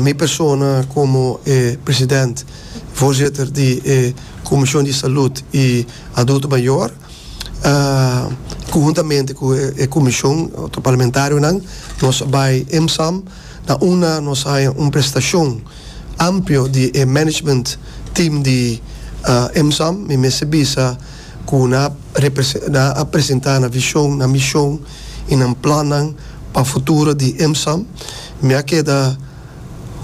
Mi persona komo e president i voorzitter di e Komishon di Salud i Adulto Mayor, konhuntamente ku e komishon, otro parlamentarionan, nos a bai EMSAM na una, nos a haña un prestashon amplio di e management team di EMSAM. Mi mester bisa ku nan a nan a presentá nan vishon, nan mishon, y nan plannan pa futuro di IMSAM. Mi a keda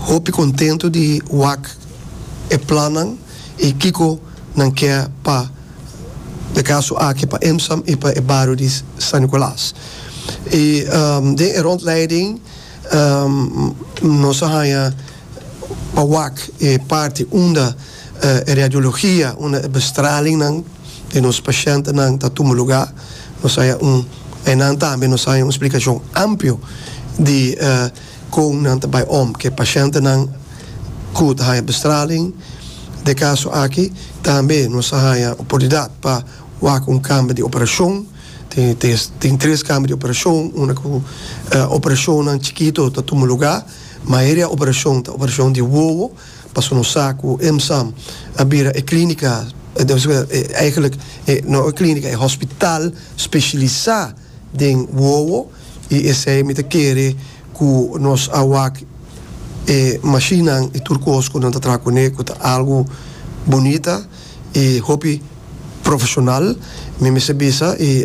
hopi contento di wak e plannan y kico nan kier pa e caso aki pa IMSAM y pa e bario di San Nicolas. Y den e rondleiding nos a haya pa wak e parti unda. E radiologia unda e bestralingnan di nos pashentenan ta tuma lugá, nos haña un Einan tambe nos haña un splikashon amplio di kon nan ta bai om ku e pashentenan ku ta haña bestraling. Dje kaso aki tambe nos a haña oportunidat pa wak un kamba di operashon. Tin tres kamba di operashon unda ku operashonnan chikito ta tuma lugá. Mayoria operashon ta operashon di wowo. Paso nos sa cu EMSAM a bira e clinica, eigenlijk no e clinica, e hospital specialisa den wowo y esey mi ta kere cu nos a wak e mashinan y tur cos cu nan ta traha cune cu ta algo bunita y hopi profesional. Mi mester bisa y.